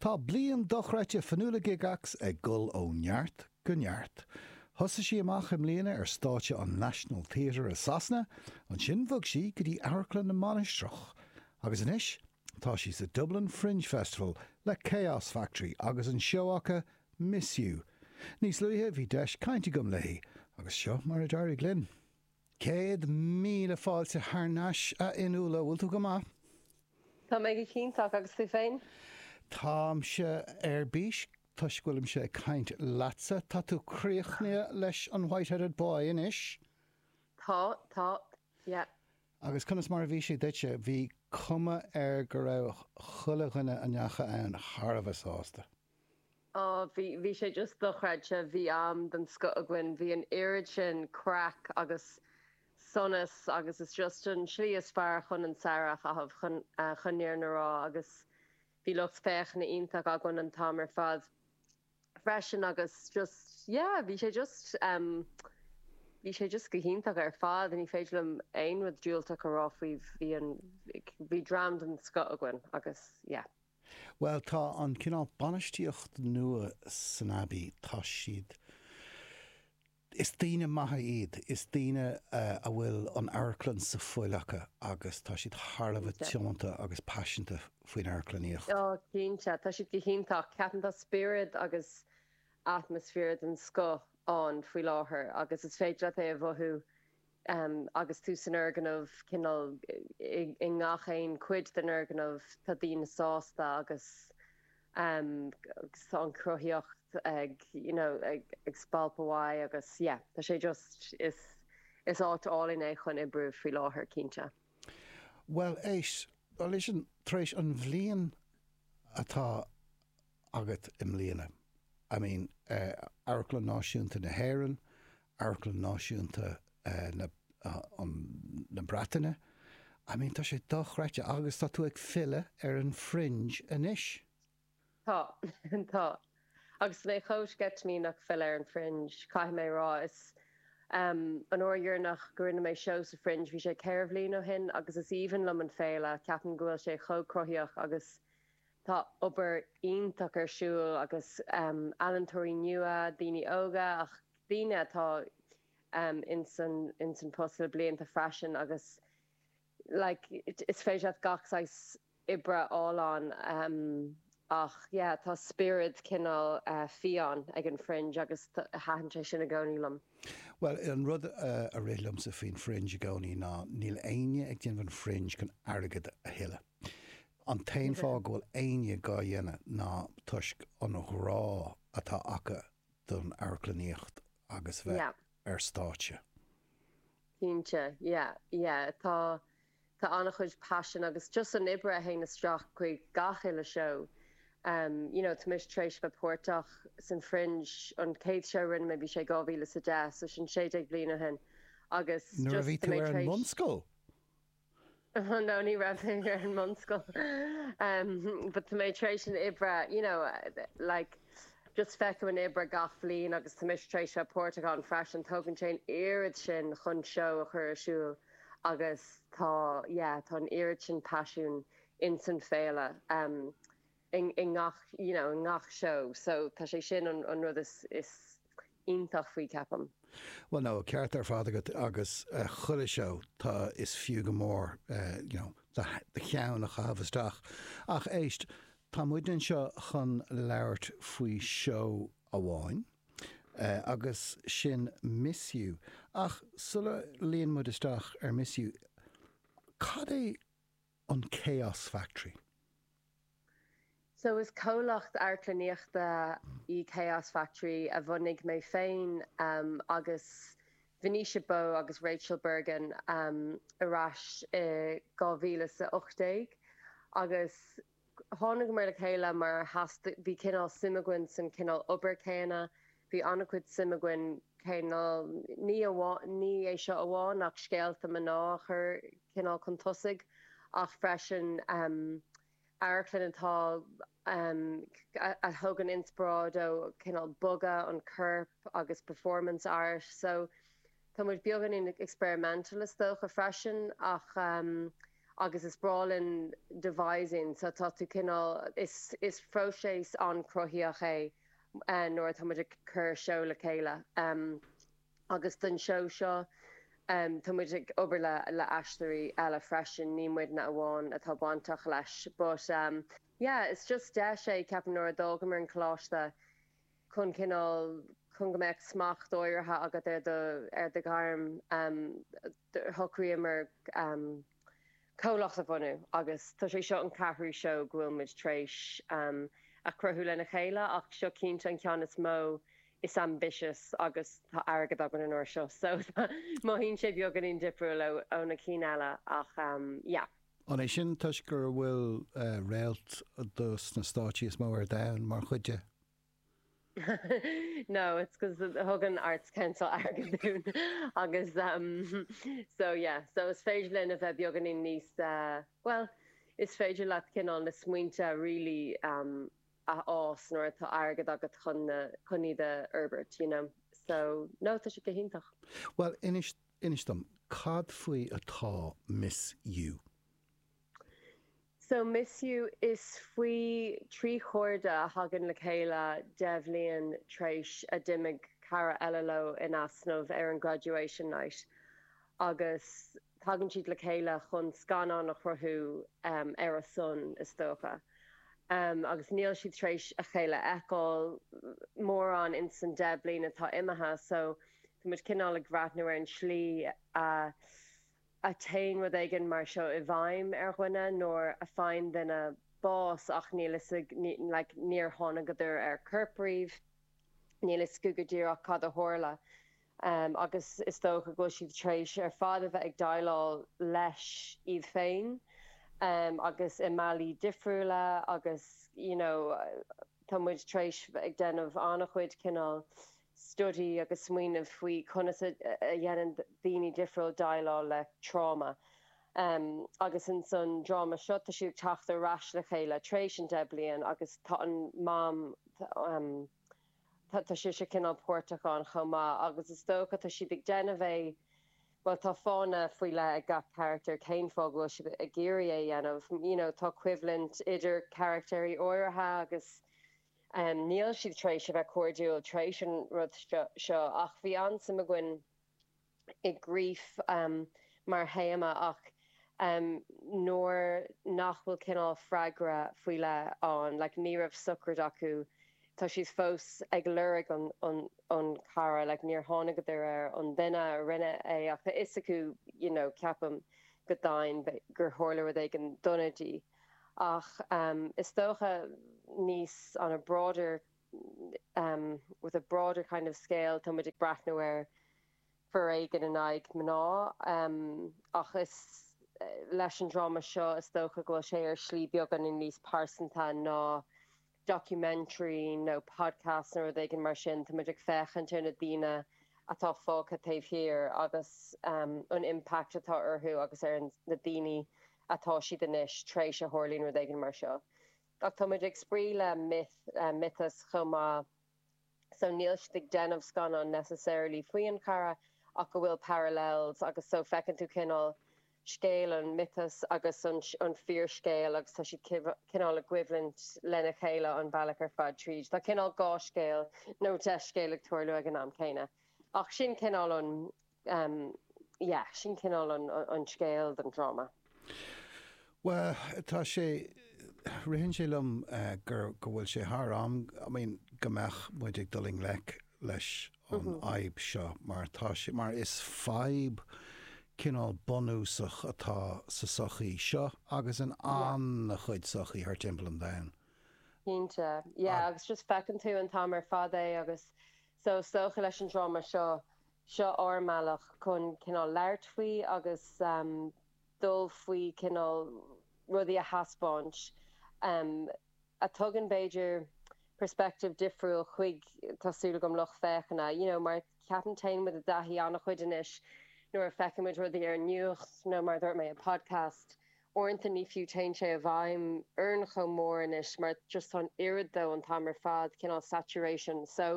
Tá bliain dochreidte Fionnuala Gigax ag dul ó neart go neart. Thosaigh sí amach i mbliana ar stáitse an National Theatre i Sasana, ansin bhog sí go dtí Amharclann na Mainistreach agus anois tá sí sa Dublin Fringe Festival le Chaos Factory agus an seó acu Miss You. Níos luaithe bhí deis cainte agam léi agus seo mar a d'éirigh linn. Céad míle fáilte thar n-ais, a Fhionnuala. Bhfuil tú go maith? Tá mé go hiontach, agus tú féin? Táimse ar bís toisc go bhfuilimse ag caint leatsa. Tá tú críochnaithe leis an White-Headed Boy anois? Tá, tá. Yeah. Agus conas mar a bhí sé duitse? Bhí cuma air go raibh chuile dhuine a ndeacha ann thar a bheith sásta. Ó, bhí, bhí sé just dochreidte, bhí am den scoth againn, bhí an oiread sin craic agus sonas agus is just an tslí is fearr chun an samhradh a chaitheamh, chun, chun na fírinne a rá agus bhí lucht féachana iontach againn an t-am ar fad freisin agus just, yeah, bhí sé just, bhí sé just go hiontach ar fad, ní féidir liom aon rud diúltach a rá faoi, bhí an, bhí dream den scoth againn agus yeah. Bhuel, tá an cineál bainistíocht nua san Abbey, tá siad, is daoine maithe iad, is daoine a bhfuil an amharclann sa fuil acu agus tá siad thar a bheith tiomanta agus paiseanta faoin amharclannaíocht. Ó, cinnte, tá siad go hiontach. Ceapaim tá spiorad agus atmaisféar den scoth ann faoi láthair agus is féidir leat é a mhothú Agus tú san fhoirgneamh, cineál i ngach aon chuid den fhoirgneamh, tá daoine sásta agus tá an cruthaíocht ag you know ag spalpadh uaidh agus yeah tá sé just, is áit álainn é chun oibriú faoi láthair, cinnte. Bhuel, éist, listen, tar éis an bhliain atá agat i mbliana? I mean, Amharclann Náisiúnta na hÉireann, Amharclann Náisiúnta na Breataine, I mean tá sé dochreidte agus tá tú ag filleadh ar an Fringe anois. Tá, tá. Agus tá mé chomh sceitimíneach filleadh ar an Fringe, caithfidh mé a rá. Is an uair dheireanach go rinne mé seó sa Fringe, bhí sé ceithre bhliain ó shin agus is aoibhinn liom an féile, ceapaim go bhfuil sé chomh cruthaitheach agus, Tá obair iontach ar siúl agus ealaíontóirí nua, daoine óga ach daoine atá ins an post le blianta freisin agus like is féidir leat gach saghas oibre a fháil ann ach yeah tá spiorad cineál fiáin ag an Fringe agus taitníonn sé sin i gcónaí liom. Bhuel, an rud a rith liomsa faoin Fringe i gcónaí ná níl éinne ag déanamh an Fringe chun airgead a thuilleadh. An t-aon fáth go bhfuil éinne dhá dhéanamh ná toisc an ghrá atá acu don amharclannaíocht agus bheith ar stáitse. Cinnte, yeah, yeah, tá. Tá an-chuid paisin agus just an oibre a théann isteach chuig gach uile seó. You know, tá mise tar éis bheith páirteach san Fringe, an chéad seó a rinne mé, bhí sé 2010, so sin sé déag bliain ó shin agus just tá mé tar éis, nuair a bhí tú ar an mbunscoil? oh no, ní raibh mé ar an mbunscoil, em, but tá mé tar éis an oiread, you know, like, just feicim an oibre gach bhliain agus tá mise tar éis bheith páirteach ann freisin, tógann sé an oiread sin chun seó a chur ar siúl. agus tá, yeah, tá an oiread sin paisiún in san féile, em, i, i ngach, you know, i ngach seó, so tá sé sin an, an rud is, is iontach faoi, ceapaim. Bhuel, no, ceart ar fad agat agus eh, chuile seó, tá, is fiú go mór eh, you know, do, do cheann a chaitheamh isteach. Ach éist, tá muidne anseo chun labhairt faoi seó amháin. Agus sin Miss You. Ach sula luíonn muid isteach ar Miss You, cad é an Chaos Factory? So is comhlacht amharclannaíochta í Chaos Factory a bhunaigh mé féin agus Venetia Bowe agus Rachel Bergin ar ais i 2018. Thángamar le chéile mar theastaigh, bhí cineál suim againn san cineál obair céanna, bhí an-chuid suim againn cineál, ní amháin, ní é seo amháin ach scéalta mná a chur cineál chun tosaigh ach freisin amharclann atá, a thugann inspioráid ó cineál bogadh an choirp agus performance art so tá muid beagáinín experimental is dócha freisin ach. agus is breá linn devising so tá tú cineál, is is phróiseas an-chruthaíoch é nuair atá muid ag cur seó le chéile agus don seó seo tá muid ag obair le le aisteoirí eile freisin, ní muidne amháin atá bainteach leis but yeah is just deis é ceapaim nuair a d'fhágamar an coláiste. chun cineál, chun go mbeadh smacht áirithe agat ar do, ar do ghairm, shocraíomar comhlacht a bhunú agus tá sé seo an ceathrú seó go bhfuil muid tar éis a chruthú lena chéile ach seo cinnte an ceann is mó, is ambitious agus tá airgead againn an uair seo so mothaíonn sé beagáinín difriúil ó na cinn eile ach yeah. An é sin toisc go bhfuil réalta de sna stáitsí is mó ar domhan mar chuid de? No, it's 'cause thug an Arts Council airgead dúinn agus so yeah, so is féidir linn a bheith beagáinín níos, bhuel, is féidir leat cineál na smaointe really a fhás nuair atá airgead agat chun iad a fhorbairt, you know, so no, tá sé go hiontach. Bhuel, inis Inis dom, cad faoi atá Miss You? So Miss You, is faoi trí chairde a thagann le chéile deich bhliain tar éis a d'imigh cara eile leo in easnamh ar an graduation night agus tagann siad le chéile chun scannán a chruthú ar a son, is dócha. Agus níl siad tar éis a chéile a fheiceáil mórán insan deich bliain atá imithe so Tá muid cineál ag breathnú ar an tslí a théann rud éigin mar seo i bhfeidhm ar dhuine nuair a fhaigheann duine bás ach níl fhios ag, like, níor thángadar ar corp riamh, níl fhios acu go díreach cad a tharla agus is dócha go bhfuil siad tar éis ar fad a bheith ag déileáil leis iad féin agus i mbealaí difriúla agus, you know, tá muid tar éis ag déanamh an-chuid cineál. study agus smaoineamh faoi conas a dhéanann daoine difriúla déileáil le tráma. Agus insan dráma seo, tá siad ag teacht ar ais le chéile tar éis an deich bliain agus tá an Mam, tá sise cineál páirteach ann chomh maith agus is dócha tá siad ag déanamh é, bhuel tá fáthanna faoi leith ag gach carachtar, cén fáth go bhfuil siad ag iarraidh é a dhéanamh. You know, tá coimhlint idir charachtair áirithe agus Níl siad tar éis a bheith cairdiúil tar éis an rud seo, ach bhí an-suim againn i grief mar théama ach nuair nach bhfuil cineál freagra faoi leith ann, like ní raibh sochraid acu, tá siad fós ag lorg an chara, like níor thángadar ar an duine a rinne é ach tá fhios acu, you know, ceapaim go domhain, gur tharla rud éigin dona di. Ach is dócha níos on a broader, with a broader kind of scale, tá muid ag breathnú ar foréigean in aghaidh mná ach is leis an dráma seo is dócha go bhfuil sé ar shlí beagáinín níos pearsanta ná documentary nó podcast nó rud éigin mar sin, tá muid ag féachaint ar na daoine atá fágtha taobh thiar agus an impact atá orthu agus ar na ndaoine atá siad anois tar éis a tharlaíonn rud éigin mar seo. Ach tá muid ag spraoi le myth, miotas chomh maith. so níl siad ag déanamh scannán necessarily faoin chara ach go bhfuil parallels agus so feiceann tú cineál scéal an miotas agus an fíorscéal agus tá siad cineál i gcoimhlint lena chéile an bealach ar fad tríd. Tá cineál dhá scéal nó deich scéal ag tarlú ag an am céanna ach sin cineál an yeah, sin cineál an scéal don dráma. Bhuel, tá sé, ritheann sé liom gur, go bhfuil sé thar am, I mean, go mbeadh muid ag dul i ngleic leis an fhadhb seo mar tá sé, mar is fadhb cineál bunúsach atá sa sochaí seo agus in an-chuid sochaí thar timpeall an domhain. Cinnte, yeah, agus just feiceann tú an t-am ar fad é agus so, is dócha leis an dráma seo, Seo ár mbealach chun cineál labhairt faoi agus dul faoi cineál rudaí a thaispeáint a thugann b'fhéidir perspective difriúil chuig, tá súil agam, lucht féachana. You know, mar ceapaim téann muid i dtaithí an-chuid anois nuair a fheiceann muid rudaí ar an nuacht nó mar a dúirt mé i podcast, uaireanta ní fiú téann sé i bhfeidhm orainn chomh mór anois mar just tá an oiread de an t-am ar fad, cineál saturation. So.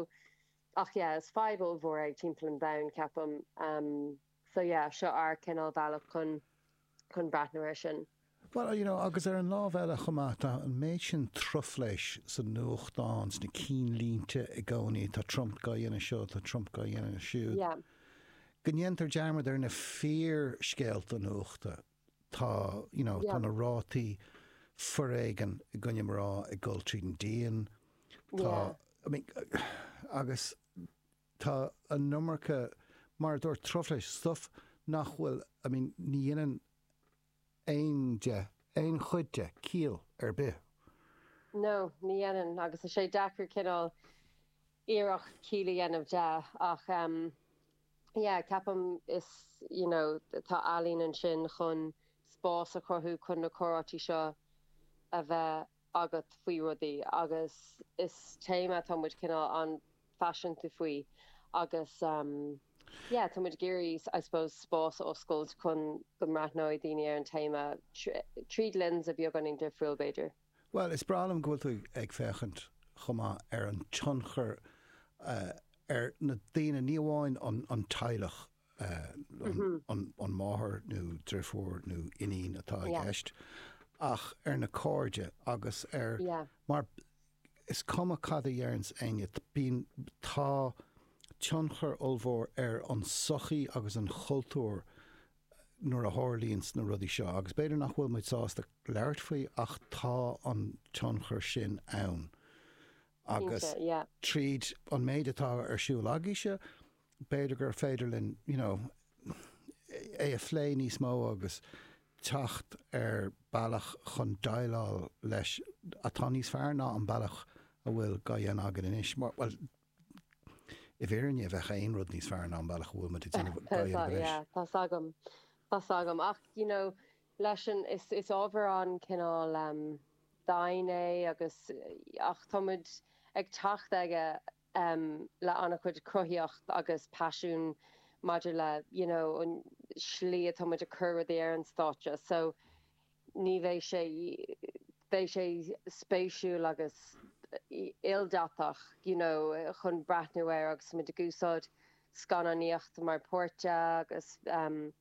Ach yeah, is fadhb ollmhór é timpeall an domhain, ceapaim. So yeah, seo ár cineál bealach chun chun breathnú air sin. Bhuel, you know, agus ar an lámh eile chomh maith, tá an méid sin truflais sa nuachtán, sna cinnlínte i gcónaí, tá Trump dá dhéanamh seo, tá Trump dá dhéanamh siúd, go ndéantar dearmad ar na fíorscéalta nuachta. Tá, you know, tá na rátaí foréigin i gcoinne mná ag dul tríd an díon. Tá, I mean, agus tá an iomarca, mar a dúirt, truflais, stuff nach bhfuil, I mean, ní dhéanann aon de, aon chuid de ciall ar bith. No, ní dhéanann, agus tá sé deacair cineál iarracht ciall a dhéanamh de, ach, yeah ceapaim is you know tá ealaín ansin chun spás a chruthú chun na comhráite seo a bheith agat faoi rudaí agus is téama atá muid cineál an-phaiseanta faoi agus em yeah tá muid ag iarraidh I suppose spás a oscailt chun go mbreathnóidh daoine ar an téama tríd lens beagáinín difriúil b'fhéidir. Bhuel, is breá liom go bhfuil tú ag féachaint chomh maith ar an tionchar ar na daoine, ní amháin an teaghlach, an máthair nó deirfiúr nó iníon atá i gceist, ach ar na cairde agus ar, mar is cuma cad a deireanns éinne, bíonn, tá tionchar ollmhór ar an sochaí agus an chultúr nuair a tharlaíonn na rudaí seo, agus b'fhéidir nach bhfuil muid sásta labhairt faoi, ach tá an tionchar sin ann. Agus tríd an méid atá ar siúl agaibhse, b'fhéidir gur féidir linn, you know, é a phlé níos mó agus teacht ar bealach chun déileáil leis atá níos fearr ná an bealach a bhfuil á dhéanamh againn anois. Bhuel, I bhfírinne, an mbeadh aon rud níos fearr ná an bealach a bhfuil muid ag déanamh go dtí anois? Tá's agam, tá's agam. Ach you know, leis an, is, is ábhar an-chineál dian é agus, ach tá muid ag teacht aige le an-chuid cruthaíocht agus paisiún maidir le, you know, an slí atá muid ag cur rudaí ar an stáitse. So. Ní bheidh sé. Beidh sé spéisiúil agus ildatach you know chun breathnú air agus muid ag úsáid scannánaíocht mar pháirt agus em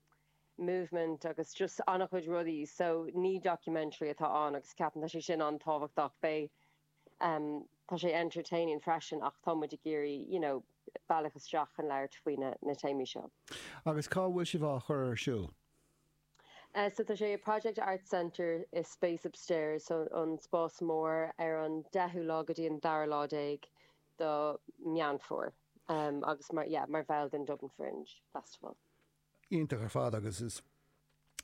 movement agus just an-chuid rudaí so ní documentary atá ann agus ceapaim tá sé sin an-tábhachtach. Beidh em tá sé entertaining freisin ach tá muid ag iarraidh you know bealach isteach chun labhairt faoi na na téamaí seo. Agus cá bhfuil sibh á chur ar siúl? So tá sé i Project Arts Centre i Space Upstairs, an Spás Mór, ar an 10ú lá go dtí an dara lá déag do Meán Fómhair agus mar, yeah, mar bhall den Dublin Fringe Festival. Iontach ar fad agus is,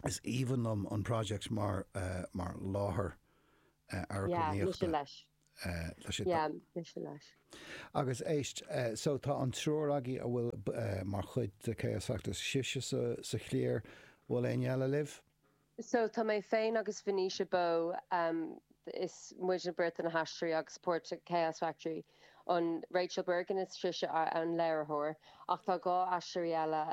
is aoibhinn liom an Project mar, mar láthair amharclannaíochta. Yeah, mise leis. Yeah, mise leis. Agus éist, so tá an triúr agaibh a bhfuil mar chuid de Chaos Factory, sibhse sa chliar, bhfuil éinne eile libh? So tá mé féin agus Venetia Bowe, is muidne beirt na haisteoirí agus páirt Chaos Factory, an Rachel Bergin is sise an léiritheoir, ach tá dhá aisteoirí eile,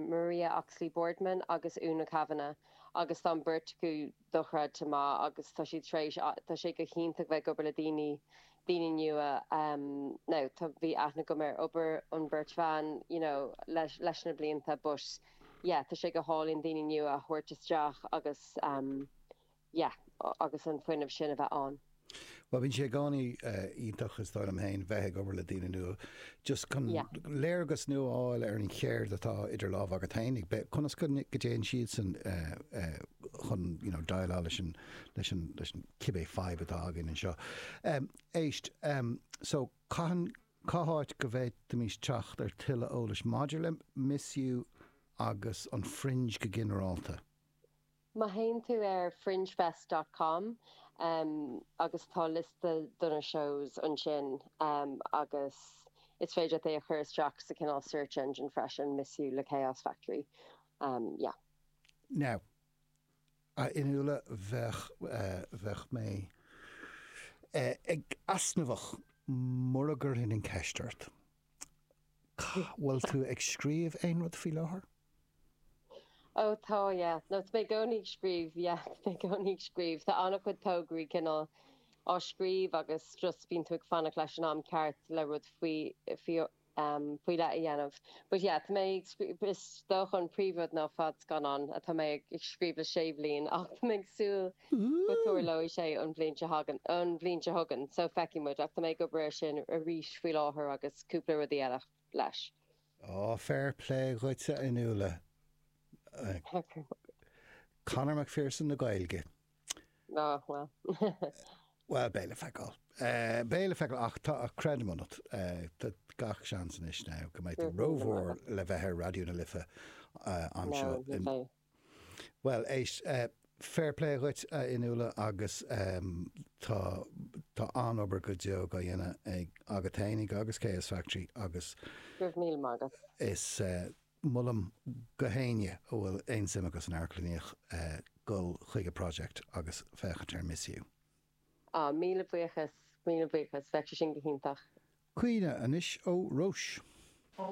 Maria Oxley-Boardman agus Úna Kavanagh, agus tá an bheirt acu dochreidte maith agus tá siad tar éis, tá sé go hiontach bheith ag obair le daoine, daoine nua now tá, bhí aithne agam ar obair an bheirt bhan you know leis, leis na blianta but yeah tá sé go hálainn daoine nua a thabhairt isteach agus yeah agus an fuinneamh sin a bheith ann. Bhuel bhíonn sé i gcónaí iontach is dóigh liom féin bheith ag obair le daoine nua just chun léargas nua a fháil ar an cheird atá idir lámh agat féin ag breith, conas go dtéann siadsan chun you know déileáil leis an leis an leis an cibé fadhb atá againn anseo. Éist, so cathain cá háit go bhféadfaimis teacht ar tuilleadh eolais maidir le Misneach agus an Fringe go ginearálta? Má théann tú ar fringefest dot com agus tá liosta do na shows ansin agus is féidir leat é a chur isteach sa cineál search engine freisin, Misiú le Chaos Factory. Yeah. Now, a Fhionnuala bheadh, bheadh mé ag easnamhach mura gcuirfinn an ceist ort, bhfuil tú ag scríobh aon rud faoi láthair? Ó tá, yeah. No, tá mé i gcónaí ag scríobh, yeah. Tá mé i gcónaí ag scríobh. Tá an-chuid tograí cineál á scríobh agus just bíonn tú ag fanacht leis an am ceart le rud faoi, faoi, em, faoi leith a dhéanamh. But yeah, tá mé ag scríobh, is dócha an príomhrud ná fadscannán atá mé ag scríobh le sé bhliain ach tá mé ag súil go dtarlóidh sé an bhliain a thagann, an bhliain seo chugainn. So feicfidh muid ach tá mé ag obair air sin arís faoi láthair agus cúpla rudaí eile. leis. Ó, fair plé dhuit, a Fhionnuala. Conor McPherson na Gaeilge. Ó, bhuel. Bhuel, beidh le feiceáil. Beidh le feiceáil, ach tá creideamh ionat. Tá gach seans anois now go mbeidh tú rómhór le bheith ar Raidió na Life anseo. Bhuel, éist, fair play dhuit, a Fhionnuala, agus tá, tá an-obair go deo á dhéanamh ag, agat fhéinig agus Chaos Factory agus. Go raibh míle maith agat. Is molaim do éinne a bhfuil aon suim acu san amharclannaíocht dul chuig an Project agus féachaint ar Misiú. Á, míle buíochas, míle buíochas, bheadh sé sin go hiontach. Caoineadh anois ó Róis.